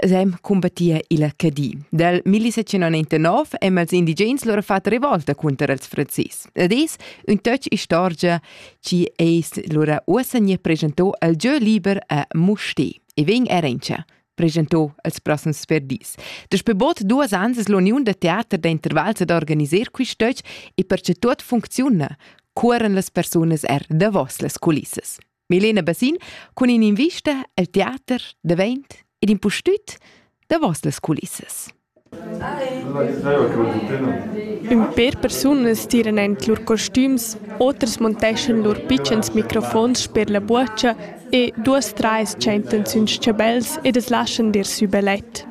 Sem cumbattia il Cadi. Dal 1799 hem els indigens lura fat revolta cunter els franzis. Ed es ün töch istorgia chi ais lura uossa gne presentò al giö liber a Mustè. E vegn a Rentscha presentò als prossens verdis. Daspö bod duos ans es l'uniun da teater da intervals ad organiser quist töch e perche tuot funcziuna, cuoran las persunas er davos las culissas. Milena Bassin cun in'invista al teater davent ed impustüt davos las culissas. Ün per persunas tiran en lur costüms, otras monteschan lur pitschens microfons per la buocha e duos trais tschentan sün s-chabels ed as laschan dir sü belet.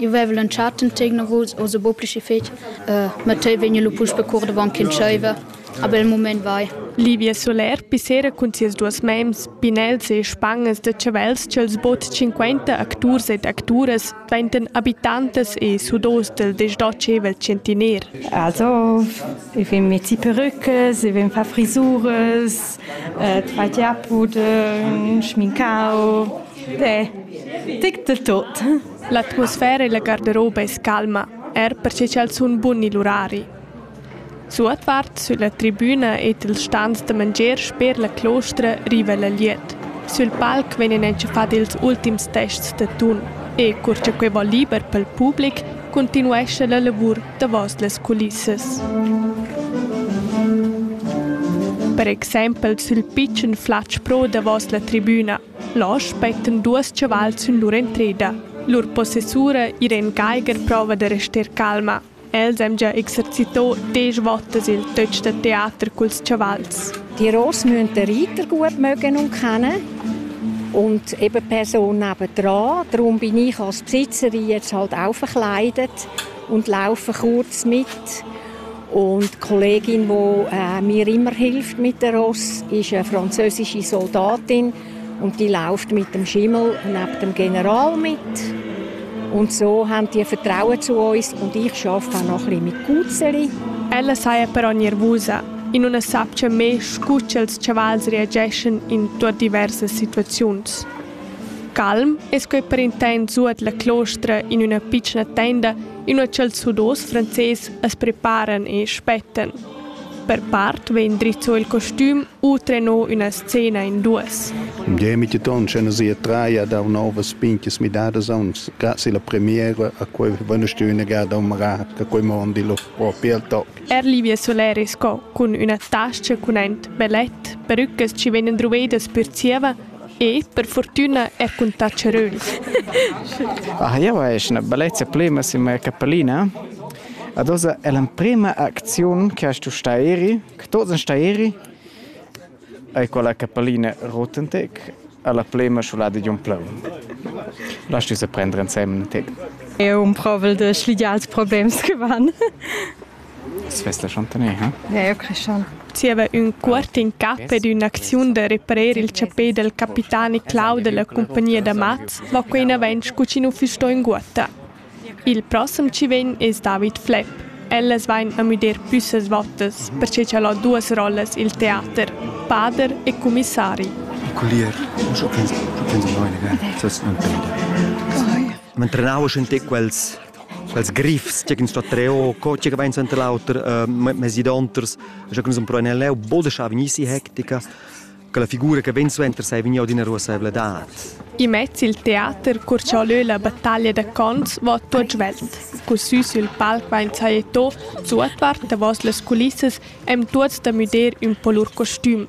Eu veva lantschà tant tegnavuls, oz buca pli schi fetg. Mattei vegn lu puspe cur davon ch'entscheiva. A bel mument vai. Livia Soler pissera cun sias duas mems, pinels e spangas da chavels ch'els bod 50 acturs ed acturas dvaintan abitantas e sudos del desdotschevel centiner. Also, ich bin mit die Perückes, ich bin fa Frisuras, äh, zwei Tiapudeln, Schminkau, de, tic de tot. L'atmosfera illa garderoba es calma, eir perche cha'l sun bun i'l urari. Suotvart sülla tribüna ed i'ls stans da mangier sper la clostra riva la glieud. Sül palc vegnan entschafats ils ultims tests da tun e, cur cha quai vo liber pel public, cuntinuescha la lavur davos las culissas. Per exaimpel sül pitschen flatg pro davos la tribüna Là spettan duos chavals sün lur entreda. Lur possessura Irene Geiger prova da rester calma. Els han già exercitò desch votas il töch da teater culs chavals. Die Ross müssen den Reiter gut mögen und kennen und eben die Person nebendran. Darum bin ich als Besitzer jetzt halt auch verkleidet und laufe kurz mit. Und die Kollegin, die äh, mir immer hilft mit der Ross, ist eine französische Soldatin und die läuft mit dem Schimmel neben dem General mit. Und so haben die Vertrauen zu uns und ich arbeite auch noch ein bisschen mit Cuzeri. Ella saja però nervusa e non sa che me scuccia els chavals reageschan in tua diversas situaziuns. Calm es quei per intent zuat la clostra in una piccina tenda Inua ch'els Hudos frances as preparan e spettan. Per part vegn drizzo il costüm u treno üna scena in duos. Im Demitetton scena sia traia da novas pinches midadas ons. Grazie la premiera a quei vanestü negada un marà da quei mondi lo propi al toc. Er Livia Soleri sco cun üna tascha cun ent bellet, perucas ci vegnan druvedas per zieva E per fortüna è cun tacharuns. Ah, jau esch ina bellezza plema sin mia capellina. Ad oza è l'emprema acziun che hast tu sta eri, che tots en sta eri, è quella capellina Rotentec alla plema sciolada di un pleu. Lass du se prendere insieme, Tig. Eu umprovel de schligiar els problems che van. Svess la chantaner, ha? Ne, eu creschan. Zieva ün cuort in cap ed ün'acziun da reparer il chapè dal capitani Clau della compagnia da mats va quein avent scu chi nu füss sto inguotta. Il prossem chi vegn es David Flepp. Ellas vain a müder püssas vottas, perche cha'l ho duos rollas i'l teater, pader e cumissari. Collier, schon quel, schon quel di noi, ne? Das ist ein Bilder. Man trenava schon quels quels griffs che ins sta treo co che vain senter l'auter uh, mesi donters ja che sun pro nel leu boda scha vegnissi hectica che la figura che ben suenter sei vegnia d'ina ruasevladad i mezz il teater cur cha lö la battaglia da cons va tot svelt cu sü sul palc vain sajeto suotvart davos las culissas em tuots da müder ün po lur costüm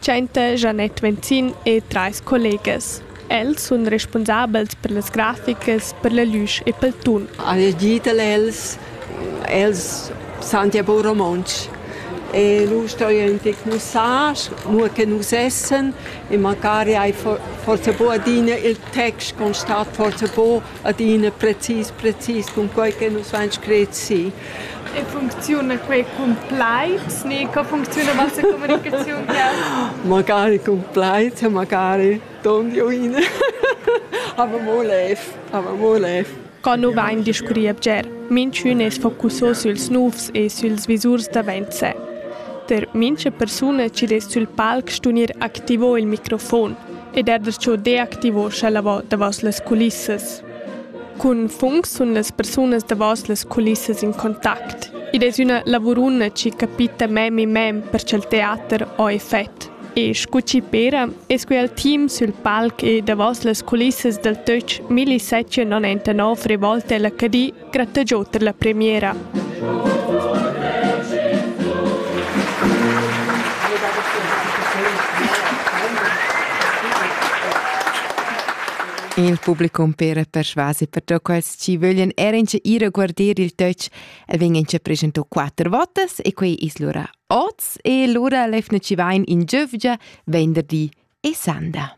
Tschenta Janette Venzin e trais collegas. Els sun respunsabels per las graficas, per la lüsch e pel tun. Al gitel els els santia po romontsch. E lu stoi enti mussage, mo che nus essen e macari hai forse po adina il text constat forse po adina precis, precis cun quai che nus han scret si. E funcziuna quai cun plaids ni co funcziuna vossa comunicaziun? magari cun plaids e magari don di uina. aber mo lev, aber mo lev. Qua nu vain discurri bger, minchün es focusso süls nouvs e süls visurs davent se. Per mincha persuna chi dess sül palc stunir activo il microfon ed ha darcheu deactivo scha lavor davos las culissas. Cun func sun las persunas davos las culissas in contact. Id es üna lavuruna chi capita mem in mem per cha'l teater ho effet. E scu chi pera es quel team sül palc e davos las culissas dal töch 1079 revolte l'HD Gratteggiau per la premiera. Il publicum per persvasi per da quels ci vöglien era ince ir a guarder il töch e vegn ince presento quatter votas e quei is lura oz e lura lefna ci vain in giövgia venderdi e sanda.